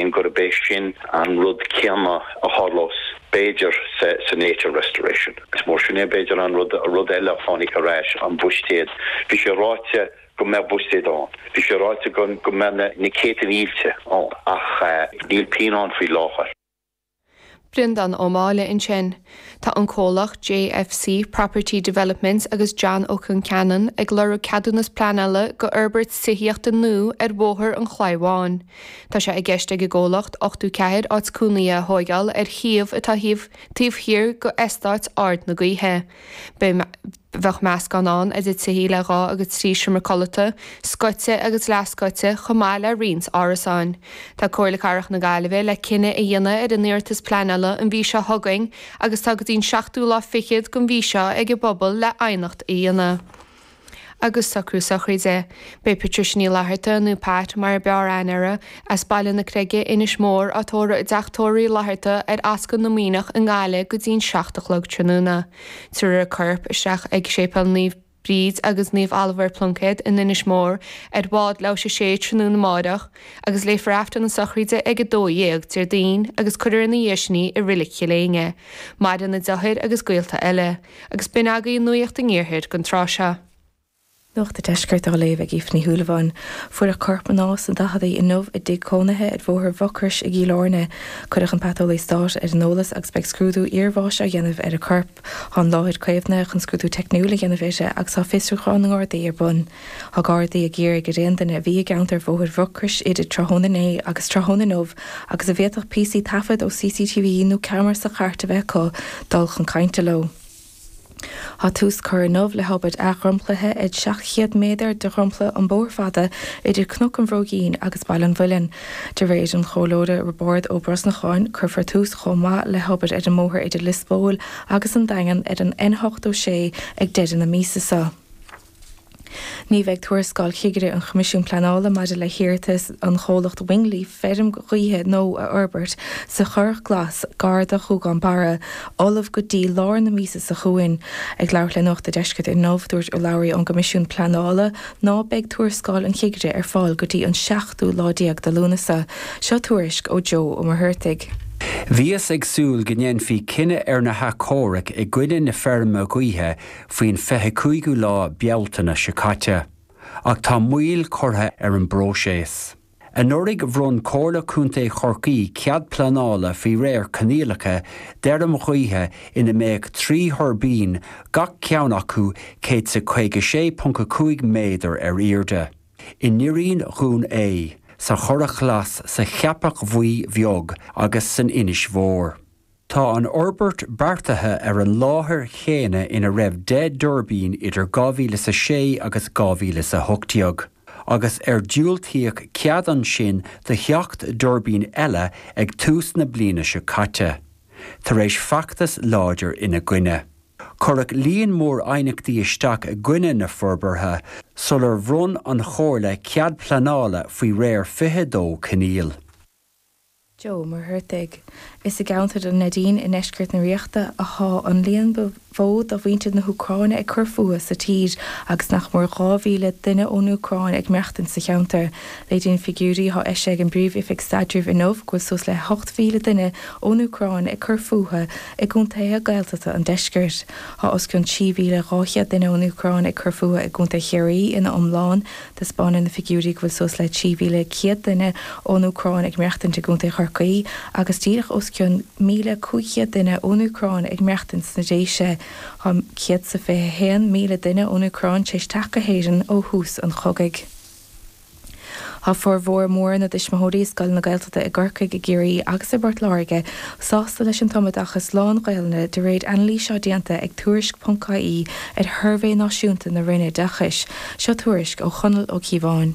gurb é sin an rud céanna a tharlós b'fhéidir sa Nature Restoration. Is mar sin é b'fhéidir an rud, rud eile a tháinig ar ais, an buiséad. Bhí sé ráite go mbeadh buiséad ann, bhí sé ráite go mbeadh na céadta mílte ann, ach níl pingin ann faoi láthair. Breandán Ó Máille ansin. Tá an comhlacht JFC Property Developments agus John Ó Conceanainn ag iarraidh ceadúnas pleanála go fhorbairt tithíochta nua ar Bhóthar an Chlaí Bháin. Tá sé i gceist ag an gcomhlacht ochtó ceathair áit cónaithe a thóigeáil ar shuíomh atá taobh thiar go Eastát Ard na Gaoithe. Bheadh meascán ann idir tithí le dhá agus trí sheomra codlata, scoite agus leathscoite, chomh maith le roinnt árasáin. Tá Comhairle Cathrach na Gaillimhe le cinneadh a dhéanamh ar an iarratas pleanála an mhí seo chugainn agus tá go dtí'n seachtú lá fichead den mhí seo ag an bpobal le aighneacht a dhéanamh agus socrú sochraide. Beidh Patricia Ní Fhlatharta, nó Pat mar a b'fhearr aithne uirthi, as Baile na Creige, Inis Mór, á tórramh i dTeach Tórraimh Uí Fhlatharta ar Ascaill na Muimhneach i nGaillimh go dtí'n seacht a chlog tráthnóna. Tabharfar a corp isteach ag Séipéal Naomh Bríd agus Naomh Oliver Plunkett in Inis Mór ar bhád leathuair théis a 6 tráthnóna amáireach agus léifear Aifreann na sochraide ag 12:00 Déardaoin agus cuirfear ina dhiaidh sin í i Reilig Chill Éinne. Maireann a deartháir agus gaolta eile, agus b'in agaidh an nuaíocht an iarthair gon tráth seo. Nuacht a' Deiscirt á léamh ag Aoife Ní Shúilleabháin. Fuaireadh corp mná sna daichidí inniu i dtigh cónaithe ar Bhóthar Mhucrois i gCill Airne. Cuireadh an Paiteolaí Stáit ar an eolas agus beidh scrúdú iarbháis á dhéanamh ar an gcorp. Tá an láthair caomhnaithe chun scrúdú teicniúil a dhéanamh uirthi agus tá fiosrúchán na nGardaí ar bun. Tá Gardaí ag iarraidh ar aon duine a bhí i gceantar Bhóthair Mhucrois idir tráthnóna inné agus tráthnóna inniu agus a bhféadfadh píosaí taifead ó CCTV nó ceamara sa chairt a bheith acu dul chun cainte leo. Tá tús curtha inniu le hobair athdhromchlaithe ar 700 méadar de dhromchla an bhóthair fada idir Cnoc an Bhróigín agus Baile an Mhuilinn. De réir an Chomhairleora Roibeárd Ó Brosnacháin, cuirfear tús chomh maith le hobair ar an mbóthar idir Lios Póil agus an Daingean ar an N86 ag deireadh na míosa seo. Ní bheidh tuarascáil Chigire an Choimisiúin Pleanála maidir le hiarratas an chomhlacht Wingleaf feirm ghaoithe nua a fhorbairt sa Churrach Glas gar do Ghuagán Barra ullamh go dtí lár na míosa seo chugainn. Ag labhairt le Nuacht a' Deiscirt inniu, dúirt urlabhraí ón gCoimisiún Pleanála ná beidh tuarascáil an Chigire ar fáil go dtí an seachtú lá déag de Lúnasa. Seo tuairisc ó Joe Ó Muircheartaigh. Bhíothas ag súil go ndéanfaí cinneadh ar na hathchomhairc i gcoinne na feirme gaoithe faoin 25ú lá Bealtaine seo caite, ach tá moill curtha ar an bpróiseas. Anuraidh bhronn Comhairle Contae Chorcaí cead pleanála faoi réir coinníollacha d'fheirm ghaoithe ina mbeadh trí thuirbín, gach ceann acu céad is a 56.5 méadar ar airde, i nDoirín Dún Aodha, sa Churrach Ghlas, sa Cheapach Bhuí Bheag agus san Inse Mhór. Tá an fhorbairt beartaithe ar an láthair chéanna ina raibh deich dtuirbín idir 2000 is a sé agus 2000 is a hocht déag, agus ar diúltaíodh cead ansin do sheacht dtuirbín eile ag tús na bliana seo caite, tar éis feachtas láidir ina gcoinne. Cuireadh líon mór aighneachtaí isteach i gcoinne na forbartha sular bhronn an Chomhairle cead pleanála faoi réir 22 coinníoll. Joe Mac Cárthaigh. Is i gceantar an Neidín i ndeisceart na Ríochta atá an líon is mó de mhuintir na hÚcráine ag cur fúthu sa tír agus nach mór 2,000 duine ón Úcráin ag maireachtaint sa cheantar. Léiríonn figiúirí atá eisithe ag an bPríomh-Oifig Staidrimh inniu go bhfuil suas le 8,000 duine ón Úcráin ag cur fúthu i gcontaetha Gaeltachta an deiscirt. Tá os cionn 3,200 duine ón Úcráin ag cur fúthu i gcontae Chiarraí ina iomlán, Taispeánann na figiúirí go bhfuil suas le 3,100 duine ón Úcráin ag maireachtaint i gContae Chorcaí agus díreach os cionn 1,500 duine ón Úcráin ag maireachtaint sna Déise. Tá 121,000 duine ón Úcráin tar éis teacht go hÉirinn ó thús an chogaidh. Tá formhór mór na dtuismitheoirí i scoileanna Gaeltachta i gCorcaigh, i gCiarraí agus i bPort Láirge sásta leis an tumoideachas lán-Ghaelainne de réir anailís atá déanta ag Tuairisc.ie ar shuirbhé náisiúnta na Roinne Oideachais. Seo tuairisc ó Chonall Ó Cíobháin.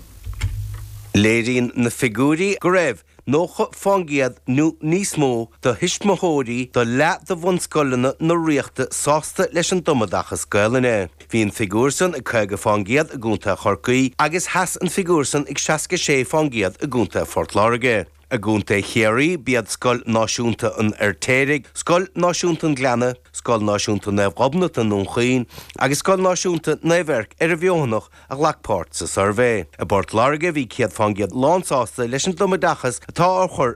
Léiríonn na figiúirí go raibh 90% nó níos mó do thuismitheoirí do leath do bhunscoileanna na Ríochta sásta leis an tumoideachas Gaelainne. Bhí an figiúr san ag 50% i gContae Chorcaí agus sheas an figiúr san ag 66% i gContae Phort Láirge. I gContae Chiarraí, b'iad Scoil Náisiúnta an Fheirtéaraigh, Scoil Náisiúnta an Ghleanna, Scoil Náisiúnta Naomh Ghobnait i nDún Chaoin agus Scoil Náisiúnta Naomh Eirc ar an bhFeothanaigh a ghlac páirt sa suirbhé. I bPort Láirge, bhí 100 fán gcéad lánsásta leis an dtumoideachas atá á chur